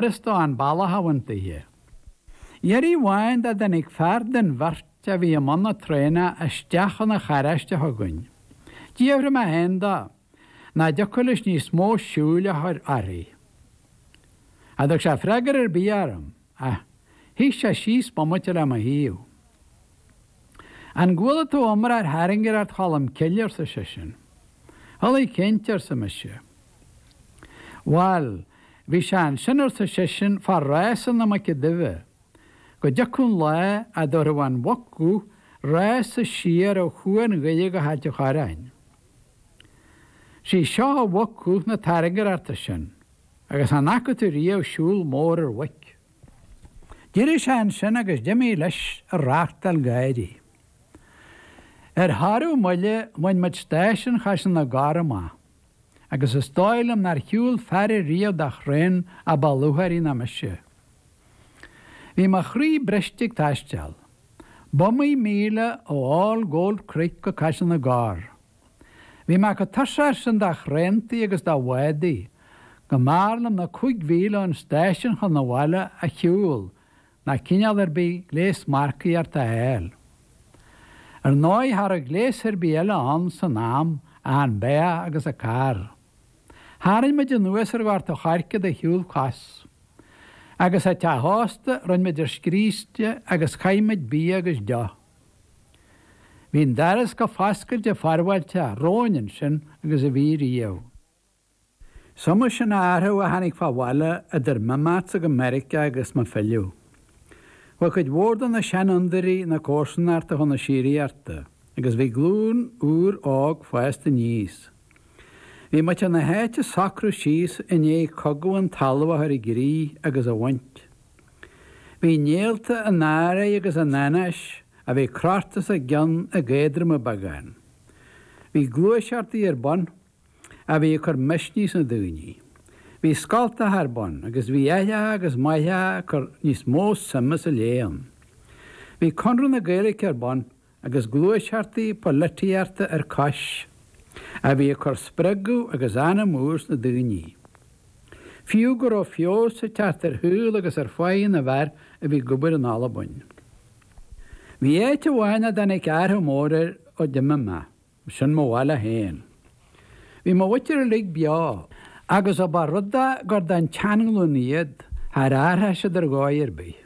Christo an bealach a bhaint daoithe. Iarraidh amháin dá dtáinig fear den bheirt a bhí i mbun na traenach isteach chun an charráiste chugainn. D'fhiafraigh mé féin de, nach dtiocfadh leis níos mó siúil a chur uirthi. Cha dtug sé freagar ar bith orm, ach shuigh sé síos bomaite le mo thaobh. An gcuala tú iomrá ar thairngreacht Cholm Cille? arsa seisean. Chualaidh, cinnte, arsa mise. Bhail, bhí sé ansin, arsa seisean, fá rása na Muice Duibhe, go dtiocfadh an lá a dtabharfadh an mhuc dhubh rása siar ó Chuan Dhoire go hAilt an Chorráin. 'Sí seo an mhuc dhubh na tairngreachta sin, agus an bhfaca tú riamh siúl mór ar mhuic? D'éirigh sé ansin agus d'imigh leis a reachtáil gáirí. Ar shárú moille bhain muid stáisiún Chaiseal na gCorr amach agus is dóigh liom nár shiúil fear ariamh de thraein a ba lúcháirí ná mise. Bhí mo chroí briste ag taisteal. B'iomaí míle ó All Gold Creek go Caiseal na gCorr. Bhí mé chomh tuirseach sin de thraentaí agus de bhádaí, go mb'fhearr liom na cúig mhíle ón stáisiún chun an bhaile a shiúl ná cineál ar bith gléas marcaíocht a fháil. Ar ndóigh, cha raibh gléas ar bith eile ann san am ach an beathach agus an carr. Tharraing muid anuas ar Ghort an Choirce de shiúl cos. Agus, sa teach ósta, rinn muid ár scríste agus chaith muid bia agus deoch. Bhí an doras chomh foscailte forbhfáilteach romhainn ansin agus a bhí riamh. Is iomaí sin athrú a tháinig fán bhaile idir m'imeachtsa go Meiriceá agus mo philleadh. Bhí cuid mhór de na seanfhondúirí na comharsanachta chun na síoraíochta agus bhí glúin úr óg fásta aníos. Bhí muintir na háite ag socrú síos i ndiaidh Cogadh an Talaimh a chur i gcrích agus a bhaint. Bhí néalta an anró agus an anáis a bhí crochta os a gcionn ag éadromú beagán. Bhí gluaiseachtaí ar bun a bhí ag cur misnigh sna daoine. Bhí scoltacha ar bun agus bhí aithreacha agus máithreacha ag cur níos mó suime sa léann. Bhí Connradh na Gaeilice ar bun agus gluaiseachtaí polaitíochta ar chois, a bhí ag cur spreagadh agus anam úr sna daoine. Fiú go raibh feabhas ag teacht ar shaol agus ar pháighe na bhfear a bhí ag obair in Albain. Bhí áit amháin a dtáinig athrach mór air ó d'imigh mé. Sin mo bhaile féin. Bhí mo mhuintir uilig beo agus ó ba rud é gur den tseanghlúin iad, char athraigh siad ar dhóigh ar bith.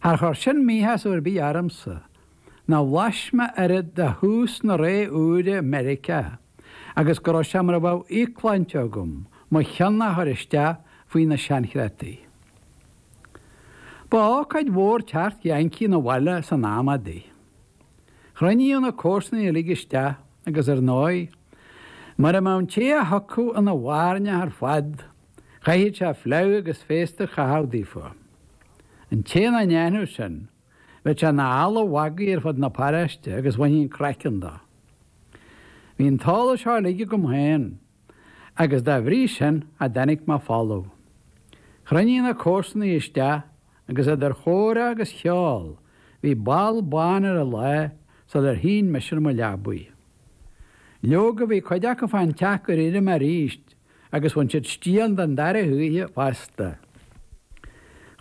Char chuir sin míshásamh ar bith ormsa, nó bhlais mé oiread de thús na ré úire i Meiriceá agus go raibh sé mar a bheadh íocshláinte agam mo chionn a chur isteach faoi na seanchreataí. Ba ócáid mhór teacht Yankee 'na bhaile san am adaí. Chruinníodh na comharsanaigh uilig isteach agus ar ndóigh, mura mbeadh an té a thiocfadh ina bhairneach ar fad, chaithfeadh sé fleadh agus féasta a chaitheamh daofa. An té nach ndéanfadh sin, bheadh sé ina eala mhagaidh ar fud na paróiste agus bhainfí an craiceann de. Bhí an t-eolas seo uilig agam féin agus dá bhrí sin cha dtáinig mé folamh. Chruinníodh na comharsanaigh isteach Agus idir chomhrá agus cheol, bhí ball bán ar an lá sular shín mise ar mo leabaidh. Leoga, bhí cuid acu fán teach gur éirigh mé arís, agus bhain siad stiall den dara hoíche fosta.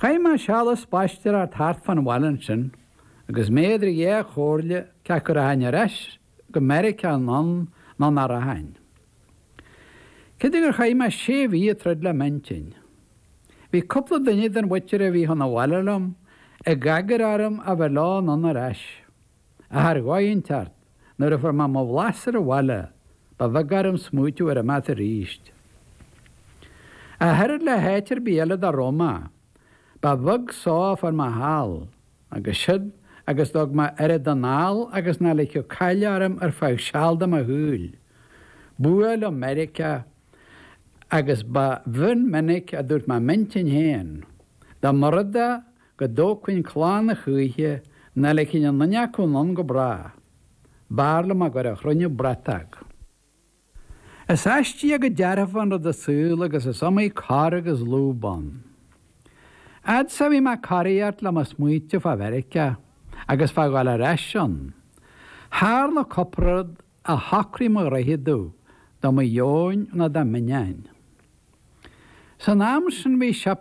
Chaith mé seal ag spaisteoireacht thart fán bhaile ansin, agus mé idir dhá chomhairle cé acu a rachainn ar ais go Meiriceá anonn nó nach rachainn. Creidim gur chaith mé sé mhí ag troid le m'intinn. Bhí cúpla duine den mhuintir a bhí chun an bhaile liom ag agair orm a bheith leo anonn ar ais. Ach ar dhóigh inteacht, nuair a fuair mé mo bhlas ar an bhaile, ba bheag orm smaoitiú ar imeacht arís. Ach oiread le háit ar bith eile dá raibh mé, ba bheag só a fuair mé thall. Agus siúd agus thug mé oiread anall agus nach ligfeadh caill orm ar feadh seal de mo shaol. B'fhuath liom Meiriceá, agus ba mhion minic a dúirt mé i m'intinn féin, dá mba rud é go dtógfainn clann a choíche, nach ligfinn aon nduine acu anonn go bráth. B'fhearr liom a gcur a chruinniú bratóg. Is aistíoch go dearfa an rud an saol agus is iomaí cor agus lúb ann. Fhad is a bhí mé ag coraíocht le mo smaointe fá Mheiriceá agus fá dhul ar ais ann. Tharla cupla rud a shocraigh mo rogha domh de mo dheoin nó de m'ainneoin. San am sin bhí siopa